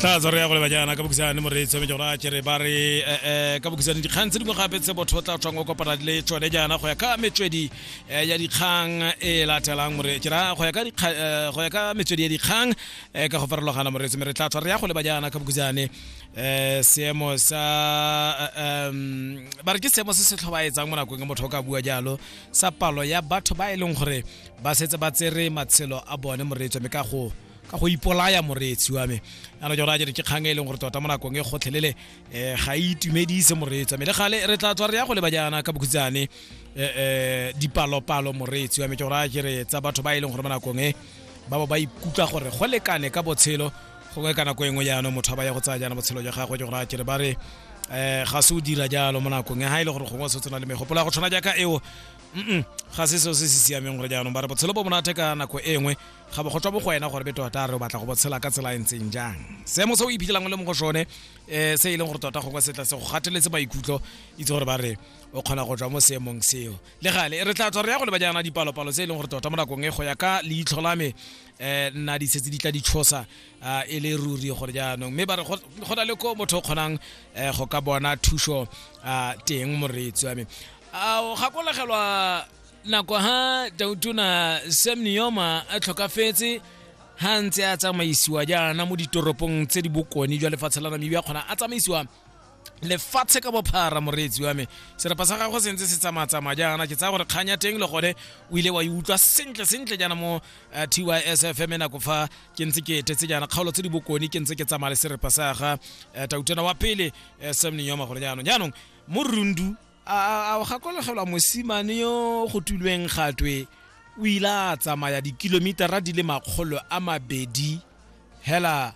tla tsa re ya go leba jaana ka bokisane moreetsi wa mejora kere ba re um ka bokisane dikgang tse dingwe gape tse botho tla tswang o kopana le tsone jaana go ya ka metswedi eh, ya dikgang e latelang more ke ra go ya ka dikga- eh, go ya ka metswedi ya dikgang eh, ka go farologana moreetsi me re tla tswa re ya go leba jaana ka bokisane um seemo sa eh, em, ba re ke seemo se se tlhobaetsang mo nakong e motho o ka bua jalo sa palo ya batho ba e leng gore ba setse ba tsere matshelo a bone moreetsi wa me ka go ka go ipolaya moreetsi wa me yana jona jere ke kgang e leng gore tota mo nakong e kgotlhelele um ga e itumedise moreetsi wa me le gale re tla tswa re ya go leba jaana ka bokhutsane um dipalopalo moreetsi wa me ke gora jere tsa batho ba e leng gore mo nakong e ba bo ba ikutlwa gore go lekane ka botshelo gongwe ka nako e nngwe jaanong motho ba ya go tsaya jaana botshelo jwa gagwe ke gora jere ba re um ga se o dira jalo mo nakong e ga e le gore gongwe o setse na le megopolo ya go tshwana jaaka eo mm ga se seo se se siameng gore jaanong ba re botshelo bo monate ka nako e nngwe ga bo go tswa bo go wena gore be tota re o batla go botshela ka tsela e ntseng jang seemo se o iphitlhelang o le mo go sone um se e leng gore tota gongwe setla se go gateletse maikutlo itse gore ba re o kgona go tswa mo seemong seo le gale re tla tswa re ya go leba jaana dipalopalo tse e leng gore tota mo nakong e go ya ka leitlho la me um nna di setse di tla ditshosa um e le ruri gore jaanong mme ba re go na le ko motho o kgonang um go ka bona thuso um teng moreetsi wa me a o gakologelwa nako ha tautona sam neoma a tlhokafetse ha ntse a tsamaisiwa jaana mo ditoropong tse di bokone jwa lefatshe la namibia kgona a tsamaisiwa lefatshe ka bophara moreetsi wa me serapa sa gagwe sentse se tsamatsamaya jaana ke tsaya gore kgang ya teng le gone o ile wa e utlwa sentle sentle jaana mo eh, tys fm e nako fa ke ntse ke etetse jaana kgaolo tse di bokone ke ntse ke tsamaya le serapa sa ga eh, tautena wa pele eh, sam nenyoma gore jaanong jaanong mo rundu a a gakologelwa mosimane yo go tulweng gatwe o ile a tsamaya dikilomitara di le makgolo a mabedi hela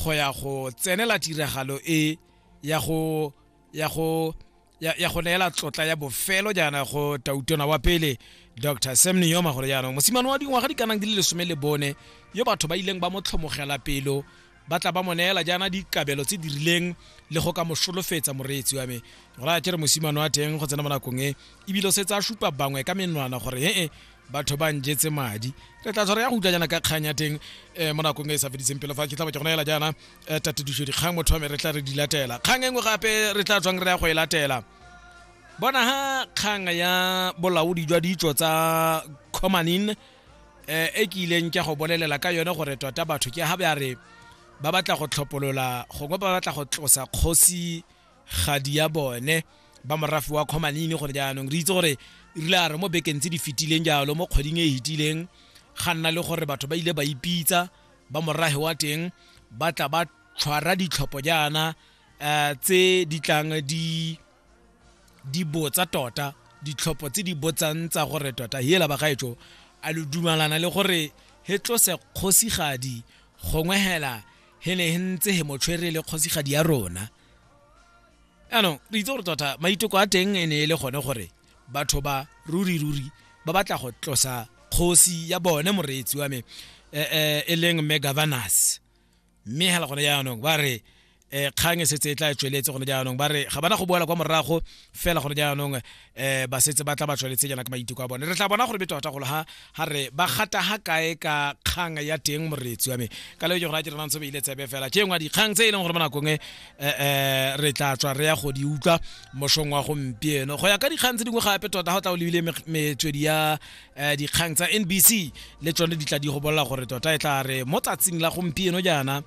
go ya go tsenela tiragalo e ya go ya go ya ya go neela tlotla ya bofelo jaana go tautona wa pele dr sam niyoma gore jaanong mosimane wa dingwaga di kanang di le lesome le bone yo batho ba ileng ba mo tlhomogela pelo ba tla ba mo neela jaana dikabelo tse di rileng le go ka mo solofetsa moreetsi wa me go raya ke re mosimane wa teng go tsena mo nakong e ebile o setse a supa bangwe ka menwana gore ee batho ba njetse madi re tla tshwara ya go utlwa jaana ka kgang ya teng um mo nakong e e sa feditseng pele fa ke tlaba ke go neela jaana um tatediso dikgang motho wa me re tla re di latela kgang e nngwe gape re tla tswang re ya go e latela bona ha kgang ya bolaodi jwa ditso tsa comanin eh, e ke ileng ke go bolelela ka yone gore tota batho ke ga ba re ba batla go tlhopolola gongwe ba batla go tlosa kgosi gadi ya bone ba morafe wa kgomanini gore jaanong re itse gore rile a re mo bekeng tse di fetileng jalo mo kgweding e e fetileng ga nna le gore batho ba ile ba ipitsa ba morage wa teng ba tla ba tshwara ditlhopho jaana um tse di tlang di di botsa tota ditlhopho tse di botsang tsa gore tota hela bagaetso a lo dumalana le gore he tlose kgosigadi gongwe hela he ne he ntse he motshwere le kgosigadi ya rona anong re itse gore tota maiteko a teng e ne e le gone gore batho ba ruri ruri ba batla go tlosa kgosi ya bone moreetsi wa me eh, eh, e leng mme governors mme hela gone jaanong ba re eh kgang e setse e tla e tsweletse gone jaanong ba re ga bana go boela kwa morago fela gone jaanong eh ba setse ba tla ba tsweletse jaana ka maiteko a bone re tla bona gore betota golo ha ha re ba gata ha kae ka kgang ya teng moretsi wa me ka leo ke gore a ke re nantse beile tsebe fela ke engwa dikgang tse e leng gore mo nakong e eh, eh, re tla tswa re ya go di utlwa mosong wa gompieno go ya ka dikgang tse dingwe gape tota ga o tla o lebile me- metswedi ya um dikgang tsa nbc le tsone di tla di go bolela gore tota e tla re mo tsatsing la gompieno jaana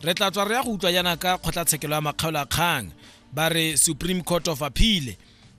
re tla tswa re ya go utlwa jaana ka kgotlatshekelo ya makgaolo a kgang ba re supreme court of appeal